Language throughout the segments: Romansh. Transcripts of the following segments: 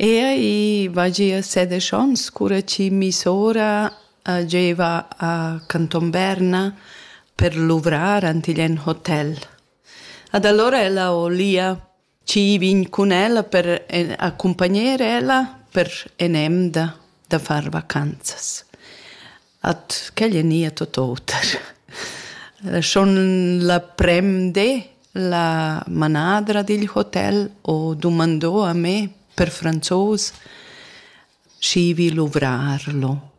Ea, i va gia sedesch ons cura chi missora giaiva a Canton Berna per luvrar ant igl en hotel. Ad allora ella ho lia chi vegn cun ella per accumpagner ella per en'emda da far vacanzas. at quel è nia tot oter. Schon la premde la manadra digl hotel ho dumandò a me per franzos schi vi luvrarlo.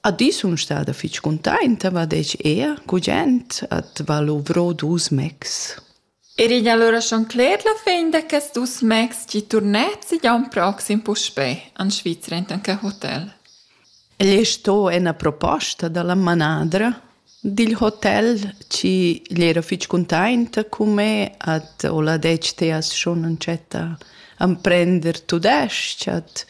A di sun stada fich cuntainta, va dec ea, gugent, at va luvro dus mecs. Er igl ha lura schon cler la fin da quests dus mais tgi turnets igl aun proxim puspè en Svizra entan quei hotel. El ei sto ena proposta dalla manadra dil hotel chi gli era fitg cuntainta cun me at ho la detg te as schon entschetta amprender tudesc at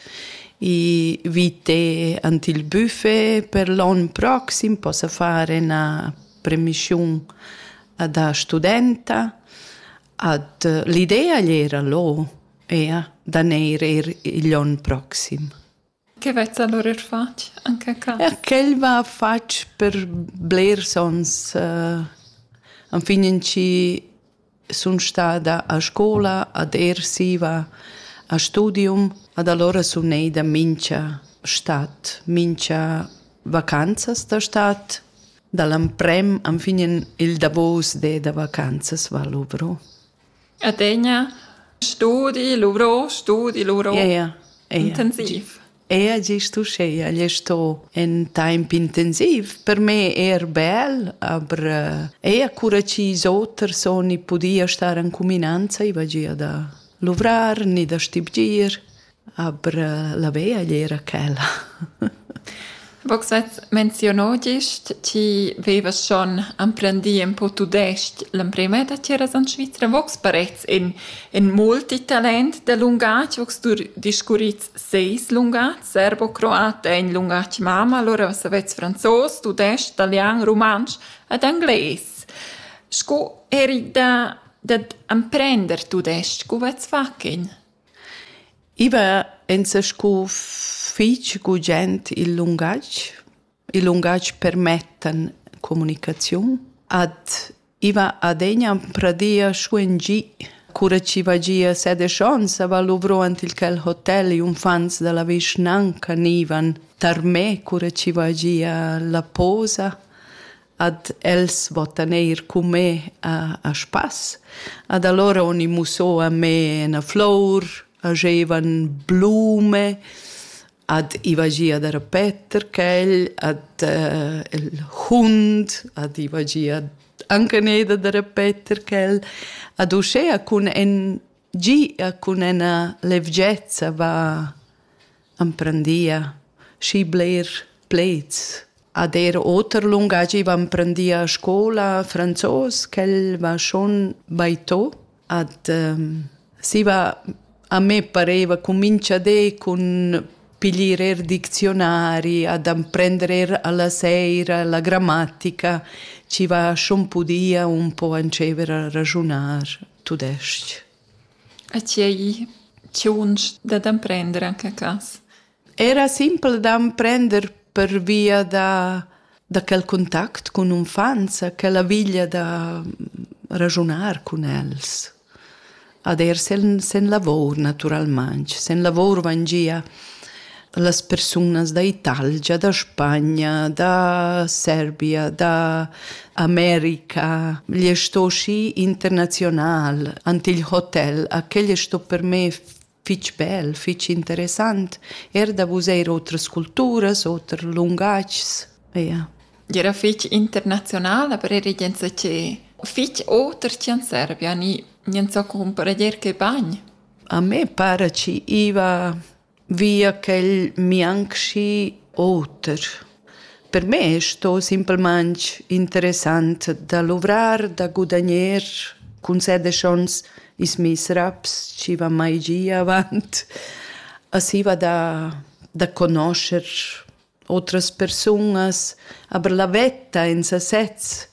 i vite ant il buffet per l'on proxim possa far ena premissiun da studenta ad l'idea era lo ea da neir er igl on proxim. Che vezza allora er fatg anche ca? Ja, quel va fatg per blers ons. Uh, fin in ci sun stada a scola, ad ersiva, a studium, ad allora sun eida mincha stat, mincha vacanzas da stat. Dall'amprem anfignen il davos de da vacanzas va luvro. Adegna studi, luvro, studi, luvro. Ja, ja. ja, ja. Intensiv. Era gest uschè agl è sto in temp intensiv, per me er bel, aber äh, eir cura ch'is oters on i pudia star en cuminanza, i va gia da luvrar ni da stibgir, aber äh, la vea agl era quella. Vogs at menziono gist, ti vevas schon emprendì ün po tudesc l'emprema da tgeras en Svizra. Vogs parets in, in multitalent da lungatg, vogs tu discurrits seis lungatg, serbo, croat è in lungatg mama, allora savets franzos, tudesc, italian, rumantsch ed anglais. Sco eri da, dad emprender tudesc, co vets fac in? I va enzè scu fich gugent il lungatg. Il lungatg permettan comunicaziun. Ad i va adegna pradia schuen gi. Cura chi va gia sedisch ons a va luvro ant il quel hotel i unfants da la vischnanca gnivan tar me cura chi va gia la posa. ad els vottan eir cun me a, a spass. Ad allora oni musso a me na flour, agevan blume, ad ivagia da repeter quel, ad uh, il hund, ad ivagia anche neda da repeter quel, ad uscea cun en Gia cun ina levgezza va emprendia schi bler plaids. Ad era oter lungatg va emprendia a scola franzos ch'el va schon baitò. Ad ehm, si va a me pareva cumintscha de cun piglier er diczionari, ad emprender er alla seira la grammatica, ci va schon pudia un po entschever a ragiunar. tudestg. A tgei tgiunsch dad emprender anche a casa? Era simpel d'emprender pervia da, da quel contact cun unfants, quella viglia da ragiunar cun els. Ad er sen, sen lavor, naturalmain. Sen lavor van gia las persunas da Italgia, da Spagna, da Serbia, da America. Gli è sto schi internazional, ante il hotel, a quel è sto per me fitg bel, fitg interessant, er da vus eir otras culturas, oter lungatgs. Ja. Era fitg internazional, aber era gente che fitg oter che in Serbia, ni niente so comprendier che bagn. A me pare ci iva via ch'el mianchi oter. Per me sto simplamaing interessant da luvrar, da gudagner cun set e schons ils meis raps chi van mai gia avant. Aschi va da da conoscher otras persunas, aber la vetta in sasez,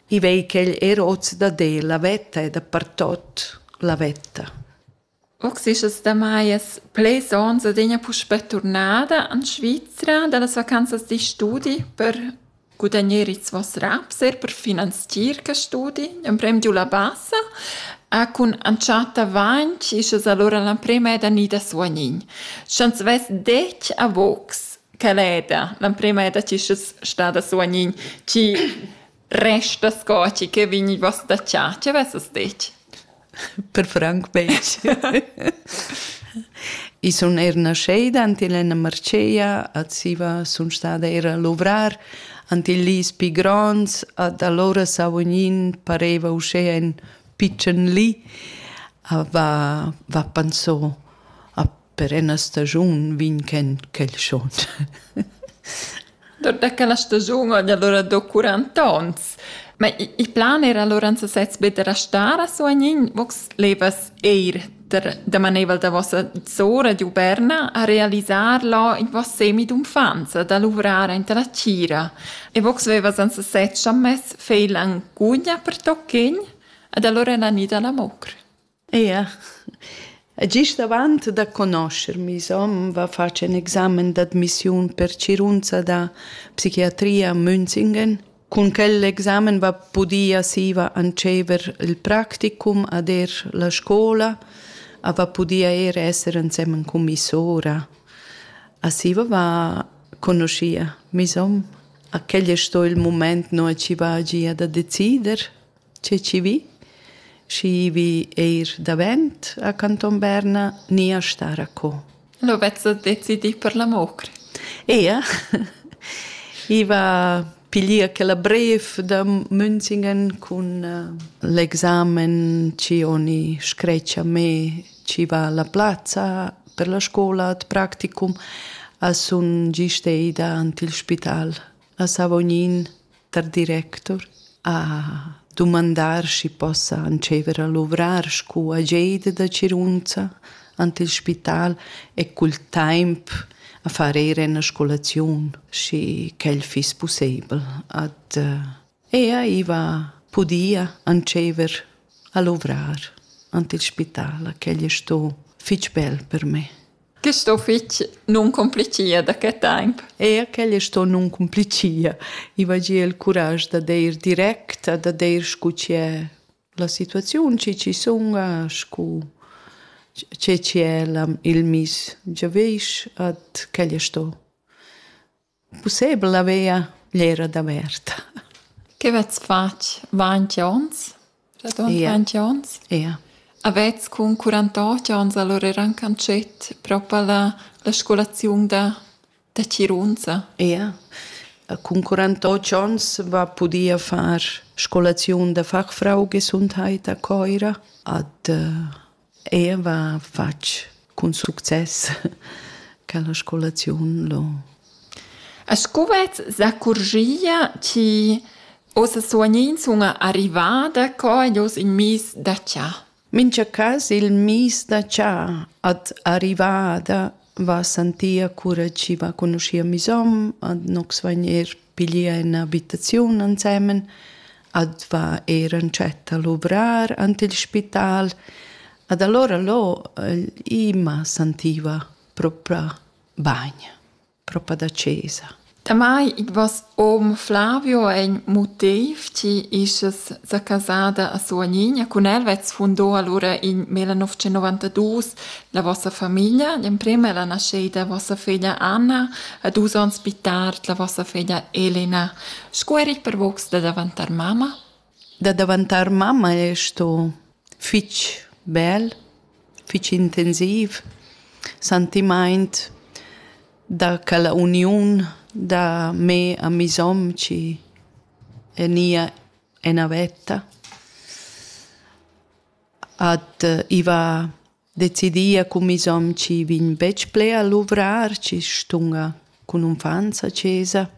i vei ch'el er hoz dad el, la vetta è dapertot la vetta. Och s'es es damajas pleds ons adegna puspè turnada in Svizra da las vacanzas da studi per gudagner its voss raps, eir per finanzier quist studi, l'emprem di u la basa. E cun entschatta vainch isch es alura l'emprema ed gnü da suognin. Sch'ans vess det a vogs, quel eda, l'emprema eda chi's es stada suognin, chi Resta sco ti che vegniva sdatgà, ti avesses detg. Per franc betg. I sun eir nascheda ant il Enna Marcea, a Ziva sun stada eir a luvrar, ant il Lis pi gronds, ad allora Savognin pareva uschè ün pitschen li, a va, va panso a per ena stagiun vin ken quel schon. da quella stagiun ogni allora do 40 ons. Ma il plan era allora anzi sez be da restare a Soagnin, vox levas eir da maneval da vossa zora di Uberna a realizzar lo in voss semi d'unfanza, da lavorare in la cira. E vox vevas anzi sez chammes feil angugna per toccin, ad allora la nida la mocr. Ia e gist avant da conoscher meis hom va fatg ün examen d'admissiun per tgirunza da psichiatria a Münzingen. Cun quel examen va pudia siva antschever il practicum ad eir la scoula a va pudia eir esser ensemen cun mi sora. A siva va conoschia meis hom. A quel es sto il mumaint no chi va gia da decider. che chi vi. Schi vi eir davent a Canton Berna ni a star a co. Lo vezzo decidì per la mocra. Ea. I va piglier quella bref da Münzingen cun uh, l'examen ci oni screccia me ci va la plazza per la scola ad practicum a sun giste ida ant il spital. a Savognin tar directur a dumandar schi possa antschever a luvrar scu ageida da Cirunza ant il spital e cul taimp a far eir üna scolaziun, schi ch'el fiss pussebel. Ad ella iva pudia antschever a luvrar ant il spital, ch'el es sto fich bel per me. Quist uffizi nun cumplichia da que temp. Eir quel es sto nun cumplichia. I vagia il curaj da deir direct e da deir scu che la situaziun chi chi sunga, scu che chi è il miss giavüsch, ed quel es sto Pussebel haveva gl'era daverta. Che vezs fatg ventg onns? Radund ja. ventg onns? Ja. Avets cun quarantotg onns allora rencanschet propa la, la scolaziun da, da Cirunza? Ja. Cun quarantotg onns va pudia far scolaziun da fachfrau gesundheit a Coira ad Ella va fatg cun success quella scolaziun lo. E sco vet s'accurgia chi ossa suognins una arrivada co ed oss in mis da cha? Mincha cas il mis da cha at arrivada va sentia cura chi va conoschia meis hom, ad nox vain eir piglià in abitaziun ensemen, ad va eir entschet a luvrar ant il spital. Ad alura lo i m'a sentiva proprà bagn, propa da chesa. Damai id voss hom Flavio eir ün motiv chi ischess sa casada a Suognigna cun el vets fundò alura in 1992 la vossa famiglia. L'emprim è la naschida vossa figlia Anna a dus ons pi tard la vossa figlia Elena. Scu erit per vogs da davantar mamma? Da daventar mamma è sto fitg bel, fitg intensiv, sentimaint da quella uniun da me a mi somci e nia ena vetta. Ad uh, iva decidia cun mes hom chi vegn betg ple a luvrar, chi stunga cun unfants a chesa.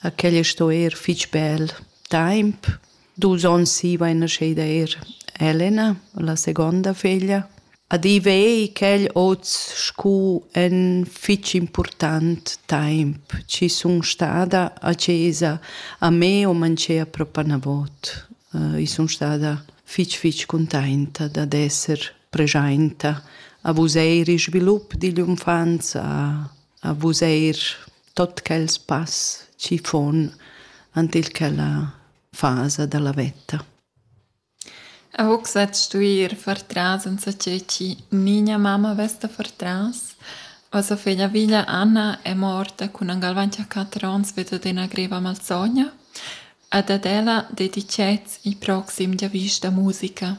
A quella sto eir fich bel taimp. Dus ons siva è nascheda eir Elena, la segonda feglia. Adiv ei quel oz scu ün fich important taimp chi sun stada a chesa a me o manchea propa 'na vot. I sun stada fich fich cuntainta dad esser preschainta a vus eir il svilup digl unfanza, a vus eir tot quels pass chi fon ant il quella fasa da la veta. Aug sa stuir far tras en ce chi niña mamma vesta far tras. La sua figlia viglia Anna è morta con an galvanti a quattro ans vedo de una greva malsogna, ad ad ella dedicez i proxim dia vista musica.